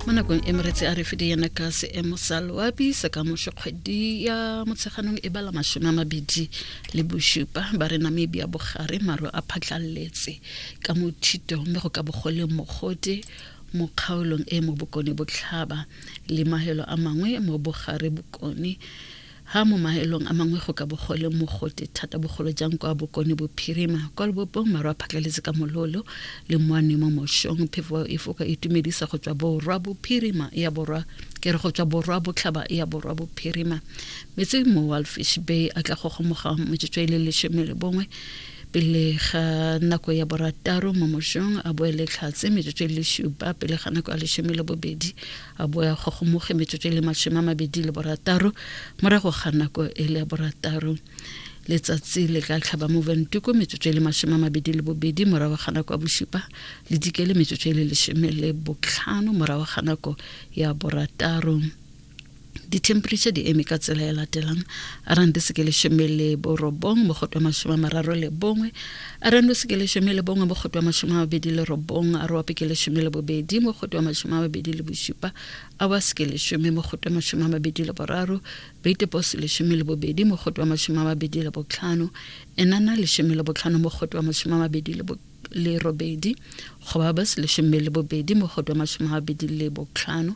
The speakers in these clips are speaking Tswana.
mo nakong e meretse a re fide yana ka seemo sa loapi sa ka moso kgwedi ya motsheganong e bala masome a mabedi le bosupa ba re namibia bogare maro a phatlaletse ka mo thitong mme go ka bogoleng mogote mo kgaolong e mo bokone botlhaba le mahelo a mangwe mo bogare bokone Ha mo maelong a mangwe go ka bo go le mogote thata bogolo jang kwa bokone bophirima kwa lobopong maru a phatlaletse ka mololo le moanwe mo mošong phefo e foka e tumedisa go tswa borwa bophirima ya borwa ke re go tswa borwa botlhaba ya borwa bophirima metsi mo walfish bay a tla go gomoga motsotso e le lesome le bongwe pele ga nako ya borataro mo mošong a boele tlhatse metsotso e le šupa pele ga nako ya lesome le bobedi a bo ya kgogomoge metsotso e le masome a mabedi le borataro morago ga nako e le ya borataro letsatsi le ka tlhaba mo ventuko metsotso e le masome a mabedi le bobedi morago ga nako ya bosupa le dikele metsotso e le lesome le botlhano morago ga nako ya borataro di-temperature di eme ka tsela e latelang arang di seke lesome le borobong mogoto masome a mararo le bongwe a re nose ke lesome le bongwe mo kgotwa masome a mabedi le robong a rope ke lesome le bobedi mo kgotwa masome a mabedi le bosupa a wa seke lesome mo kgotwa masome a mabedi le boraro beitepose lesome le bobedi mo kgotwa masome a mabedi le botlhano enana lesome le botlhano mo kgotwa masome a mabedi le bo le robedi go ba ba se lesome le bobedi mo kgotwa masome a mabedi le botlhano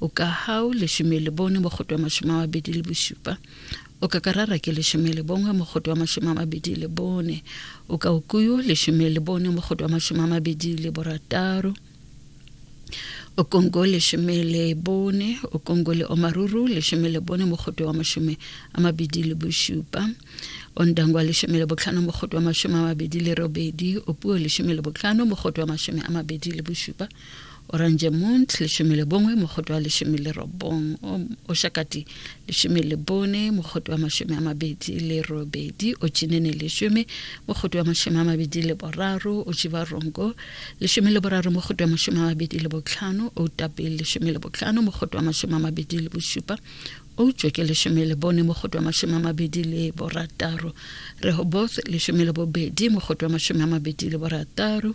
o ka hau lesome le bone mogoto wa masome a mabedi le bosupa o ka karara ke lesome le bongwe mogoto wa masome a mabedi le bone o ka okuyo lesome le bone mogoto wa masome a mabedi le borataro o kongo lesome le bone o kongo le omaruru lesome le bone mogoto wa masome a mabedi le bosupa o ndangwa lesome le botlhano mogoto wa masome a mabedi le robedi o puo lesome le botlhano mogoto wa masome a mabedi le bosupa orange mont leshome le bongwe mogoto wa leshome le robong oshakati leshome le bone mogoto wa mashome a mabedi le robedi ochinene leshome mogoto wa mashome a mabedi le boraro ochivarongo leshome le boraro mogoto wa mashome a mabedi le botlhano otape leshome le botlhano mogoto wa mashome a mabedi le bosupa outswe ke leshome le bone mogoto wa mashome a mabedi le borataro rehoboth leshome le bobedi mogoto wa mashome a mabedi le borataro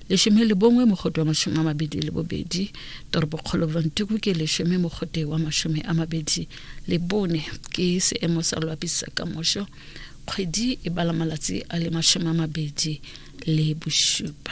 leshome le bongwe mogote wa mashome a mabedi le bobedi toropokgolo brontuku ke leshome mogote wa mashome a mabedi le bone ke seemo sa loapi sa ka mošo kgwedi e bala malatsi a le mashome a mabedi le bošupa